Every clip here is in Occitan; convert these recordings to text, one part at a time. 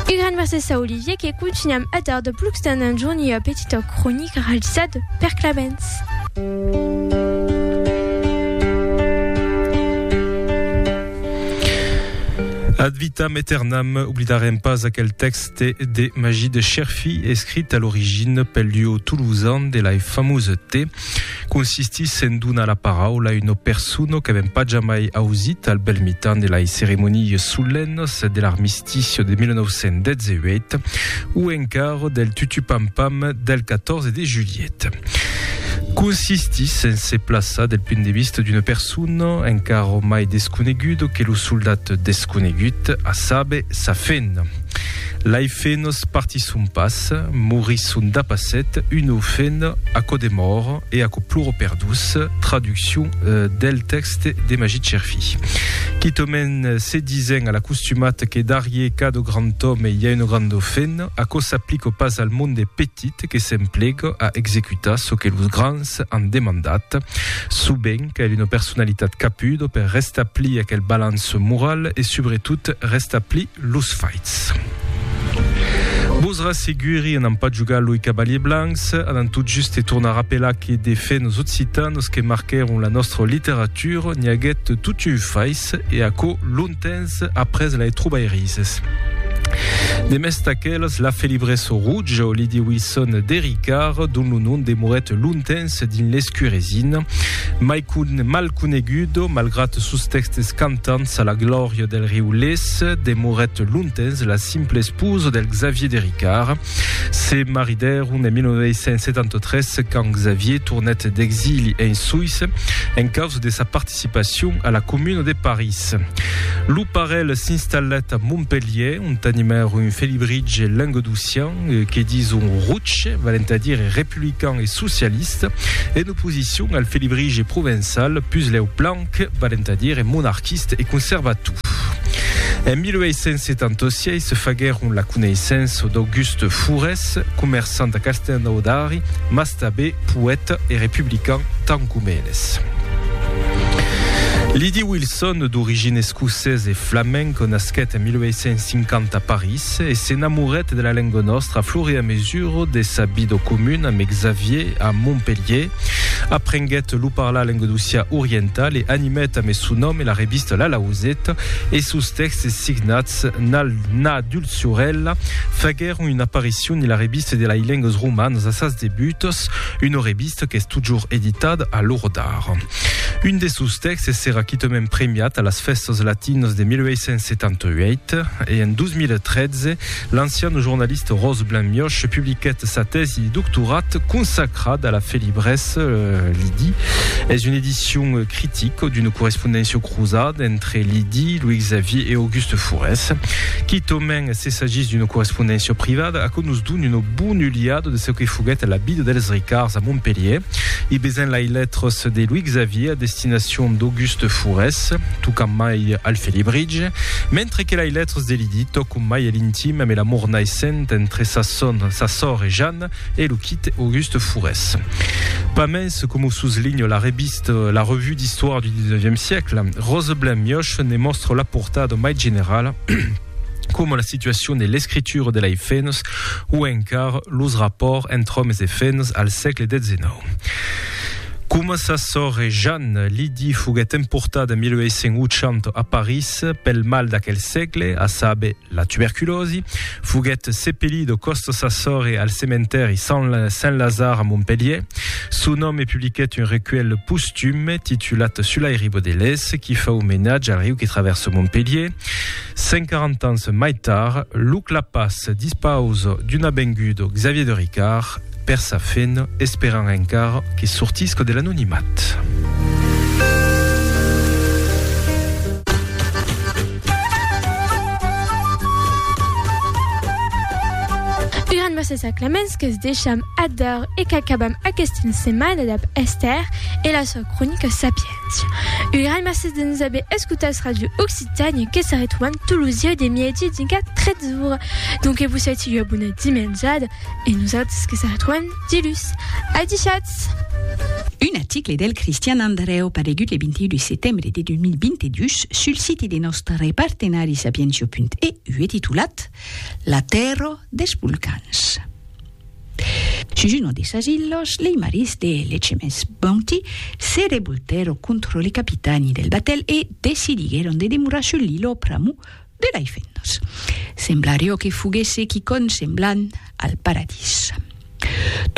E gran mercés a Olivier que contunham a dar de plucs tant en jorn ua petita cronica realizada per Clemens. Ad vitam aeternam, oblidarem pas aquel tèxte de Magí de Cherfí, escrit a l'origina pel duo toulousan de la famosa T. consistís en donar la paraula a una persona qu'avèm pas jamai ausit al bèl mitan de las ceremonias solennas de l'armistici de 1918 o encara del tutupampam del 14 de julhet. Consistís en se plaçar del punt de vista d'una persona encara mai desconeguda que lo soldat desconegut, a saber, sa fena. Lai fenos partisson pas, morisson dapasset, uno fen aquò de mòr e aquò ploro per dus, traduccion del tèxte de Magit Cherfi. Quitòmen se disen a l'acostumat que darrier cada grand òme i a un grand fen, aquò s'aplica pas al monde petit que s'emplega a executar çò que los grands an demandat. Subent cal una personalitat capuda per restablir aquel balanç moral e subretot restablir Los faits. Vos rasseguri, anam pas jogar loi cavaliers blancs, anam tot juste tornar apelar que de fait nos occitanos que marquèron la nostra literatura n'i aguèt tot un fais e aquò longtemps après la e trobairises. De mès d'aquelas, la felibresa Rouge, Lydie Wilson de Ricard, dont lo nom demorèt longtemps Ets dins l'escuresin. Mai mal conegudo, malgrat sos tèxtes cantants a la glòria del riu Lés, demorèt longtemps la simple esposa del Xavier de Ricard. Se maridèron en 1973 quand Xavier tornèt d'exili en Suisse en causa de sa participacion a la Comuna de París. Lo parelh s'installèt a Montpelhièr ont animèron un felibritge languedocian que dison roche, valent a dire republican e socialiste, en oposicion al felibrige provençal puslèu blanc, valent a dire monarquiste e conservator. En 1876 se faguèron la coneissença d'Auguste Fourès, comerçant a Castelnaudari, mas tabé poèta e republican tant com eles. Lydie Wilson, d'origine escocesa e flamenca, nasquèt en 1850 a París. Se s'enamorèt de la lenga nòstra flure a mesura de sa vida comuna amb Xavier a Montpelhier. Aprenguèt lo parlar lengadocià oriental e animèt amé son nòme la revista La Lauseta e sos tèxtes signats Nal Na Dulciorèla faguèron una aparicion en la revista de lai lengas romanas a sas debutas, una revista qu'es totjorn editada a l'ora d'ara. Un de sos tèxtes serà quitament premiat a las Fèstas Latinas de 1878 e en 2013 l'ancian jornalista Rose Blanc-Mioche publiquèt sa tèsi de doctorat consacrada a la felibresa. Euh, Lidi es una edicion critica d'una correspondéncia cruzada entre Lidi, Louis Xavier e Auguste Fourès. Quitament se s'agís d'una correspondéncia privada, aquò nos dona una bona uliada de çò que foguèt la vida dels Ricards a Montpelhier. I besain lai letras de Louis Xavier a destinacion d'Auguste Fourès, tocam mai al felibritge, mentre que lai letras de Lydie tòcon mai a l'intim ame l'amor naissent entre sa son, sa sòr e Jeanne e lo quite Auguste Fourès. Pas mens, coma o suslinha la revista La Revue d'Histoire du XIXe siècle, Roseblin Mioche ne mòstra la portada mai generala, coma la situacion de l'escritura de lei fenas o encara los rapòrts entre òmes e fenas al sègle xix. Coma sa sòrre Jeanne, Lydie foguèt emportada 1880 a París pel mal d'aquel sègle, a saber, la tuberculòsi, foguèt sepelida còsta sa sòrre al cementèri Saint-Lazare a Montpelhièr. Son òme publiquèt un recuèlh postume titulat Sulai Ribodelès qui fa omenatge al riu que travèrsa Montpelhièr. 140 ans mai tard, lo clapàs dispaus d'un avengudo Xavier de Ricard per sa fin, esperant encara que sortisca de l'anonimat. Gràcies a Clemens que es deixam ador e qu'acabam aquesta setmana dab Esther e la sua cronica Sapiens. Urai mercés de nos aver escotats Radio Occitània que se retroban tot los dies de mièdi dinca 13 ora. Donc que vos sèti ua bona dimenjada e nosautres que se retroban dilhus. Adishatz! Un article del Cristian Andrèu paregut le 21 de setembre de 2022 sul site de nòstre partenari Sapientio.eu e titulat La tèrra dels volcans. Sus uno de sas illos, lei maris de l'HMS Bounty se revoltèron contro li capitani del batèl e decidiguèron de demorar sul lillo pr'amor de lei fennas. Semblarió que foguèsse quicònh semblant al paradís.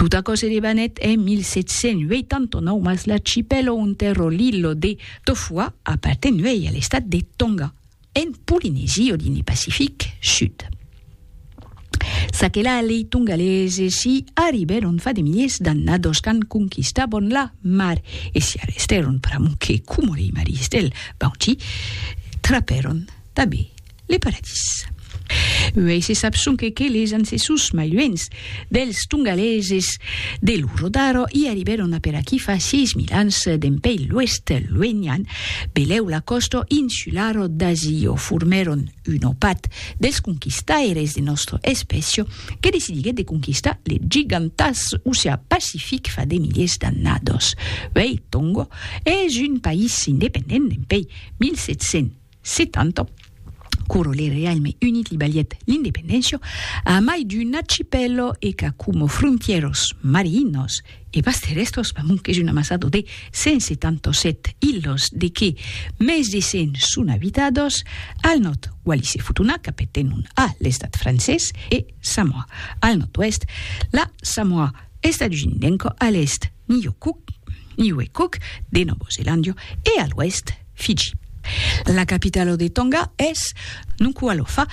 Tot aquò se debanèt en 1789 mas l'archipèlo onte ro lillo de Tofua apartenuèi a l'estat de Tonga. En Polinesie o dins le Pacific Sud. Çaquelà lei tongaleses i arribèron fa de miliers d'annados quand conquistabon la mar e s'i arrestèron pr'amor que, coma lei maris del Bounty, trapèron tanben le paradís. Uèi se sap sonque que les ancessors mai luènhs dels tongaleses de Luro d'Aro i arribèron a per aquí fa 6000 ans dempèi l'oèst luenian, belèu la còsta insulara d'Azio, formèron un opat dels conquistaires de nòstra espècia que decidiguèt de conquistar le gigantàs oceà Pacific fa de miliers d'annadas. Uèi Tonga es un país independent dempèi 1700. Se tanto, Curo le Realme Unit li balièt l'independéncia a mai d'un archipèlo e qu'a como frontièros marinos e pas terrèstres pas mond qu'es un amassado de 177 ilhos de que mès de 100 son abitados, al nòrd Wallis e Futuna, capetèn un a l'estat francés, e Samoa, al nòrd-oèst la Samoa Estadusindenco, a l'èst, Niue Cook, Niue Cook, de Nòvo Zelandio, e a l'oèst, Fiji. La capitalo de Tonga es Nuku'alofa,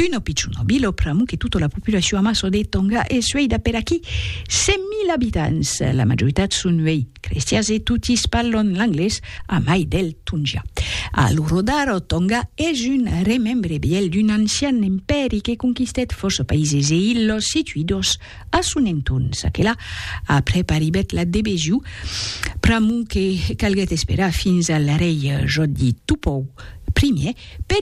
uno picciuno vilo, pr'amu que tuto la populacion amasso de Tonga e sueida per aquí 100.000 abitants. La majoritat son uei crestians e totis parlon l'anglés, a mai del tongià. A lo rodar, Tonga es un remembre vièlh d'un ancian empèri que conquistèt fòrça païses e illos situidos A son entorn, ça que la, après arribèt la de Bejiu, pr'amor que calguèt esperar fins al rei Jòdi Tupou Ier per